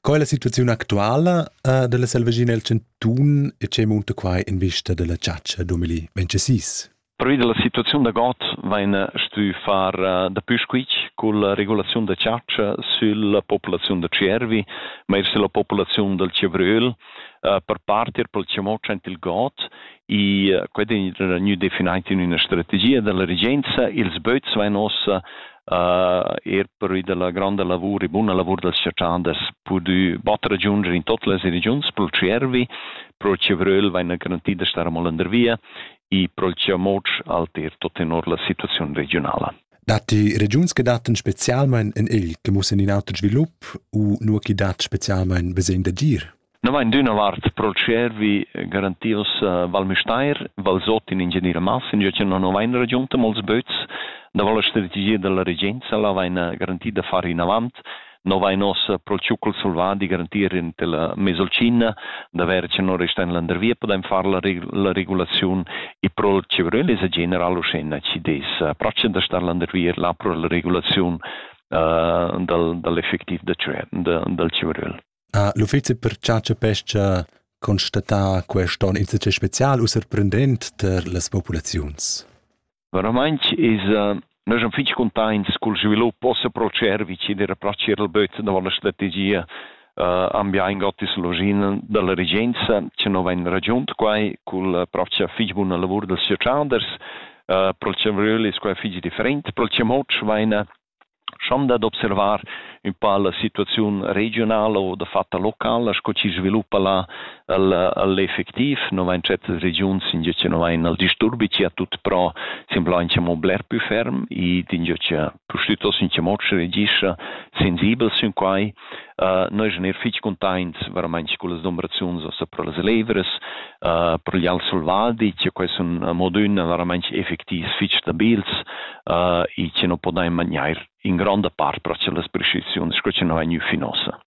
Co è la situaziun actuala uh, dalla selvaschina el chantun e che munta quai in vista dalla chatscha 2026? Pervi della situaziun da god vain stü far dapü squitsch culla regulaziun da chatscha sülla populaziun da Tschiervi, ma eir sülla populaziun dal Tschevröl, per parter pel chamoc aint il god e quai è gnü definaint in üna strategia dalla regenza. Ils böts vain ossa uh, er per la gronda lavur e buna lavur dels cerchanders pudü batter giunger in tot las regions pro Cervi, pro Cevröl vaina garantida star molender via e pro Ciamoc alter tot tenor la situaziun regionala. Datti regiuns che dattan spezialmain in il che mussen in auter svilup u nur chi dat spezialmain besegn d'agir? No vain d'üna vart pro tschiervi garantios Val Müstair, Valsot in Ingeniera Massinga, che non vain ragiunta mols böts da voler strategia dalla regenza, la vaina garanti da far inavant, no vain ossa pro tschucol selvadi garantir in tela Mesolcina, da ver che non resta in landervia, podain far la, la regulaziun e pro Cebrelesa general uschena ci des. Pracem da star landervia là pro la regulaziun uh, dal, dall'effectiv da, dal Cibrel. Ha l'uffizi per chatscha e pesca constatà quest onn insatge spezial u surprendent per las populaziuns? Veramaing es Nus am fich cuntaints cul svilup ossa pro Tschervich ed era pro Tschierlböz da la strategia uh, ambiain ottis login da la regenza cha no vain ragiunt quai cul propcha fich buna lavur dals chatschanders. Uh, pro il chambriöl es quai fich different. Pro il chamoc vaina schon dad observar ün pa la situaziun regiunala o dafatta locala sco chi sviluppa là el el effectiv nu vain certas regiuns ingio cha nu vain il disturbi chi a tut pro semblà incha mo bler pü ferm ed ingio cha pustüttos incha mo schi regischa sensibel sün quai Uh, noi eschan eir fich cuntaints veramaing cullas dumbraziuns ossa pro las levras, uh, pro gli al selvadi, che quai sun modün veramaing effectivs fich stabils uh, e che non podain magnair in gronda part pro las prescriziuns sco che non vain fin ossa.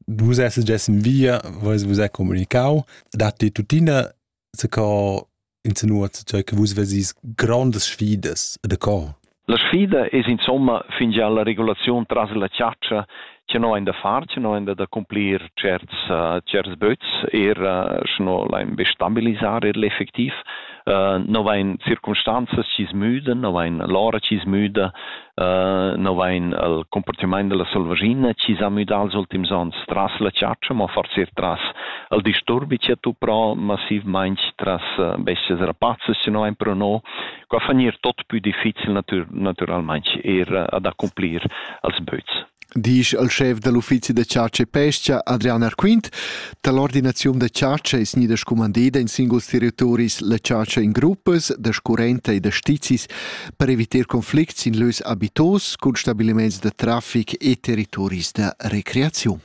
Vus esses gessen via, vois vus è comunicau, datti tuttina se co insinua tgei che vus vesis grondas sfidas da co. La sfida es insomma fingià la regulaziun tras la chatscha che no ein da far, che no ein da cumplir certs uh, certs böts, er uh, schno lain be stabilisar er l'effectiv. Uh, no vain circumstanzas chi smüden, no vain l'ora chi smüda, no vain el cumportamaint da la selvaschina chi s'ha müdà els ultims ons tras la chatscha, ma forsa eir tras il disturbi chi ha tuprà massivmaing tras bestias rapazzas chi nu vain però no. Qua fa gnir tot pü difficil natüralmaing eir ad accumplir els böts. disch al schef da l'uffizi da chatscha e pestga Adrian Arquint da l'ordinaziun da chatscha è gnida scumandida in singuls territoris la chatscha in gruppas da scurrenta e da stizis per evitar conflicts in lös abitos cun stabiliments da traffic e territoris da recreaziun.